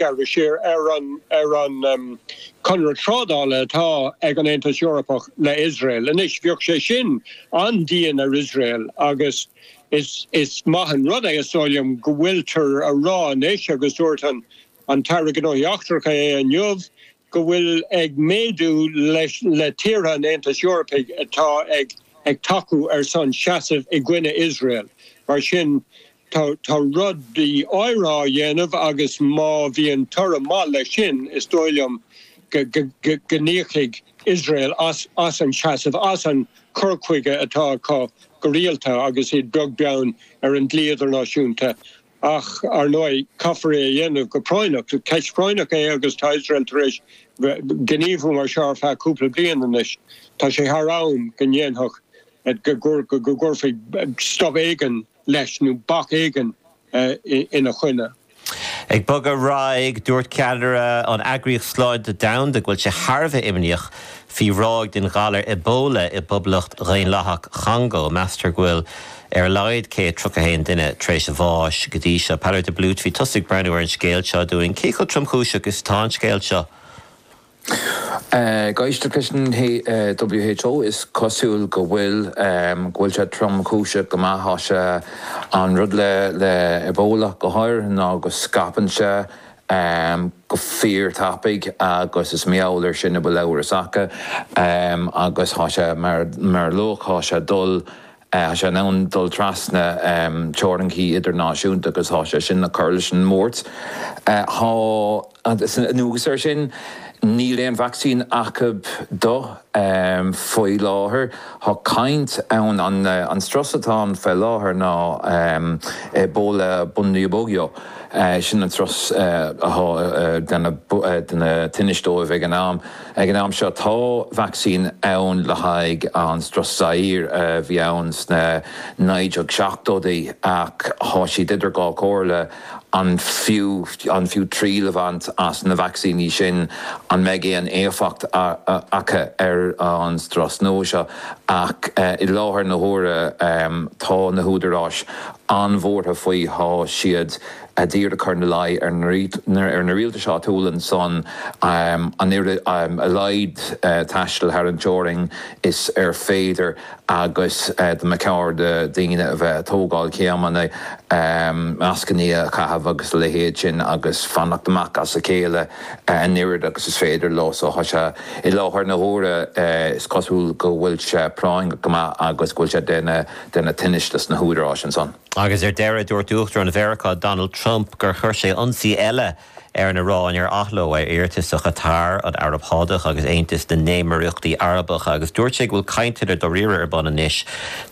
gearradh siar ar an conradh trádála atá ag an Aontas Eorpach le Iosrael. Anois, bheadh sé sin an-dian ar Iosrael agus is maith an rud é, is dóigh liom, go bhfuiltear a rá anois, agus dúirt an tAire Gnóthaí Eachtracha é inniu, go bhfuil ag méadú le tíortha an Aontais Eorpaigh atá ag tacú ar son seasaimh i gcoinne Iosrael. Mar sin, Tá rudaí áirithe á dhéanamh agus má bhíonn toradh maith leis sin is dóigh liom go n-íocfaidh Iosrael as an seasamh, as an gcur chuige atá acu go rialta agus iad beag beann ar an dlí idirnáisiúnta. Ach, ar ndóigh, caithfear é a dhéanamh go práinneach. Ceist phráinneach é agus tá Iosrael tar éis gníomhú mar seo ar feadh cúpla bliain anois. Tá sé thar am go ndéanfadh, go gcuirfí stop éigin leis nó bac éigin ina choinne. Ag bogadh ar aghaidh, dúirt ceannaire an Eagraíocht Sláinte Domhanda go bhfuil sé thar a bheith imníoch faoi ráig den ghalar Ebola i bPoblacht Dhaonlathach an Chongó. Meastar go bhfuil ar a laghad 131 duine tar éis bháis go dtí seo. Peadar de Blúit, bhí tusa ag breathnú ar an scéal seo dúinn. Cé chomh tromchúiseach is atá an scéal seo? Ag éisteacht leis an WHO, is cosúil go bhfuil go bhfuil sé tromchúiseach go maith. Tá sé an rud le le Ebola go háirithe ná go scaipeann sé go fíor tapaidh agus is i ngeall air sin a bhfuil amhras acu agus tá sé mar mar a luaigh tá sé dul Tá sé in ann dul trasna teoraincí idirnáisiúnta agus tá sé sin ag cur leis an mbuairt. Anuas air sin, níl aon vacsaín acu dó faoi láthair. Tá caint ann, an strus atá ann faoi láthair ná Ebola Bundibugyo, sin an strus atá ag déanamh tinnis dóibh ag an am. Ag an am seo, tá vacsaín ann le haghaidh an strus Zaire a bhí ann sna 1970idí, ach tá siad idir dhá chomhairle, an fiú an fiú triail a bhaint as na vacsaíní sin, an mbeidh aon éifeacht acu ar an strus nua seo? Ach i láthair na huaire, tá na húdaráis an-bhuartha faoi, tá siad. ag iarraidh a chur ina luí ar na rialtais áitiúla ansan, an oiread a laghad taistil thar an teorainn is féidir agus go mba cheart do dhaoine a bheith ag tógáil céimeanna, mascanna a chaitheamh agus a leithéid sin agus fanacht amach as a chéile an oiread agus is féidir leo. So tá sé i láthair na huaire, is cosúil go bhfuil sé práinneach go maith agus go bhfuil sé ag déanamh tinnis dos na húdaráis ansan. Agus ar deireadh, dúirt Uachtarán Mheiriceá Donald Trump gur chuir sé ionsaí eile ar an Iaráin ar athló ar iarratas ó Chatar, an Araib Shádach agus Aontas na nÉimíríochtaí Arabacha agus dúirt sé go bhfuil cainteanna dáiríre ar bun anois.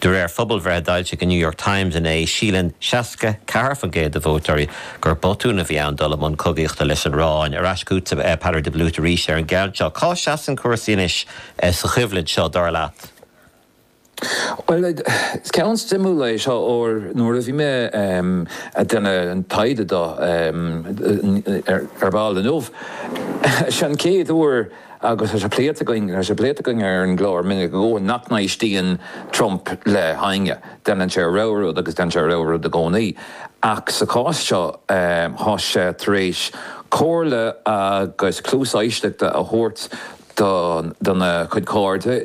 De réir phobalbhreithe a d'fhoilsigh an New York Times inné, síleann 64% de vótóirí gur botún a bhí ann dul i mbun cogaíochta leis an Iaráin. Ar ais chugat, a Pheadar de Blúit, arís ar an gceann seo. Cá seasann cúrsaí anois sa choimhlint seo, dar leat? Bhuel, is ceann suimiúil é seo óir nuair a bhí mé ag déanamh an taighde do Ar Ball inniu, is é an chéad uair agus tá sé pléite againn, tá sé pléite againn ar an gclár minic go leor nach n-éistíonn Trump le héinne. Déanann sé a rogha rud agus déanann sé a rogha rud i gcónaí. Ach sa chás seo tá sé tar éis comhairle agus cluas éisteachta a thabhairt dona chuid cairde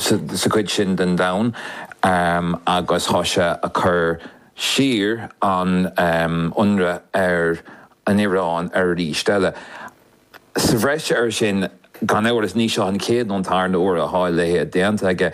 sa chuid sin den domhan agus thá sé ag cur siar an ionradh ar an Iráin arís eile. Sa bhreis ar sin, gan amhras, ní seo an chéad nó an tarna uair a thá a leithéad déanta aige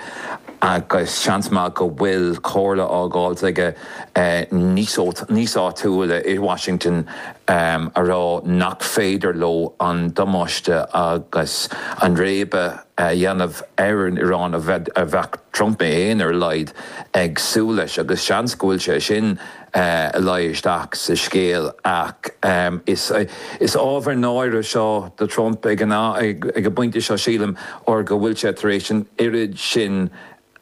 agus seans maith go bhfuil comhairle fáilte aige. níos áitiúla i Washington a rá nach féidir leo an damáiste agus an réabadh a dhéanamh ar an Iráin a bheadh Trump féin, ar a laghad, ag súil leis. Agus seans go bhfuil sé sin ag luí isteach sa scéal. Ach is ábhar náire seo do Trump ag an bpointe seo, sílim, óir go bhfuil sé tar éis an oiread sin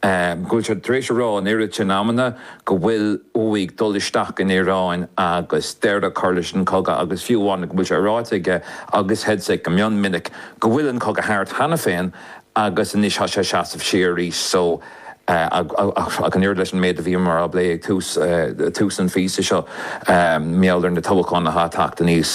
go bhfuil sé tar éis a rá an oiread sin amanna go bhfuil uaidh dul isteach in Iaráin agus deireadh a chur leis an gcogadh agus fiú amháin go bhfuil sé ráite aige agus Hegseth go mion minic go bhfuil an cogadh thart cheana féin agus anois tá sé ag seasamh siar arís so ach an oiread leis an méid a bhíomar ag plé ag tús an phíosa seo, mar gheall ar na toghacháin atá ag teacht aníos.